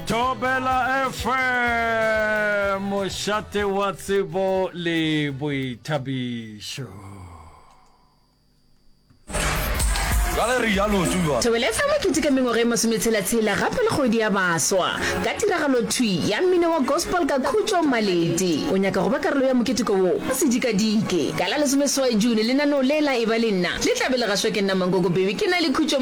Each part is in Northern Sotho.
Thobela FM, mošate wa tsebo le boithabišo. ka ge rialo tsuba thobele fa makete ka mengwaga e masometshela-tshela gape le kgwedi ya baswa ka tiragalo thwi ya mmino wa gospel ka khutšo malete o nyaka go ba karolo ya moketeko wo o sedikadike ka la lesomeswai june lenaneo le la e ba le nna le tlabe le gašwa ke nna mankoko bebe ke na le khutšo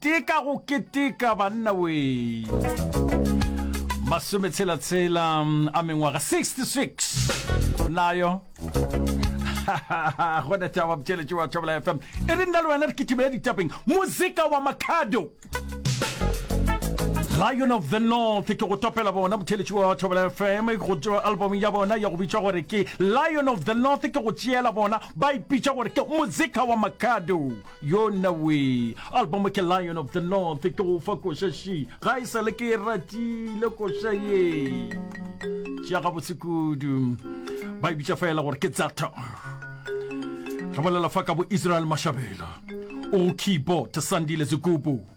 Ke ka go keteka banna wee. Masome tshela tshela a mengwaga 66 nayo go na tšaba botšeletše wa tšhabela fm e re nna le wena re kitimela ditapeng moseka wa makhado lion of the north ke go topela bona motšheletši wa thobela fm go tšwa album ya bona ya go bitša gore ke lion of the north ke go tšeela bona ba ipitša gore ke mozika wa makado Yona wee album ke Lion of the North ke go fa koša she ga e sale ke e ratile koša ye tša gabotse kudu ba e bitša fela gore ke tsata re bolela fa ka bo Israel Mashabela o keyboard Sandile Zigubu